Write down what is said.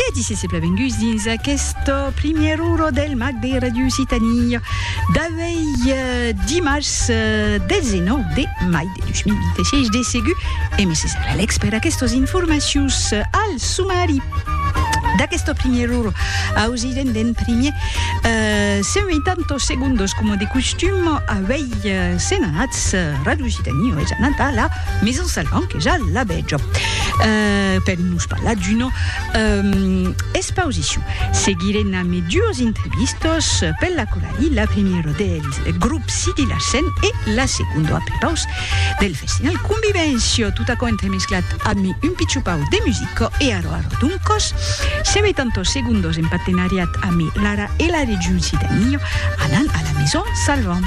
E disse se plavenguts dins aquest primièr uro del mag de Radio Occitània d'avei dimars 19 de mai de 2026. De segur, e me se serà lècs per aquestos informacius al sumari d'aquest primièr uro. Ausirem d'en primièr 180 segundos, coma de costum, avei se'n anats Radio Occitània, es anat a la Maison Salvant, que ja la Jo. Euh, per nos parlar d'una euh, exposició. Seguiré na me dues entrevistos per la Corali, la primera del grup Sidi Larsen e la segunda a prepaus del festival Convivència. Tot aquò entremesclat a mi un pitxupau de musica e aro aro duncos. Se ve tantos segundos en partenariat a mi Lara e la regiun Sidania anant a la Maison Salvant.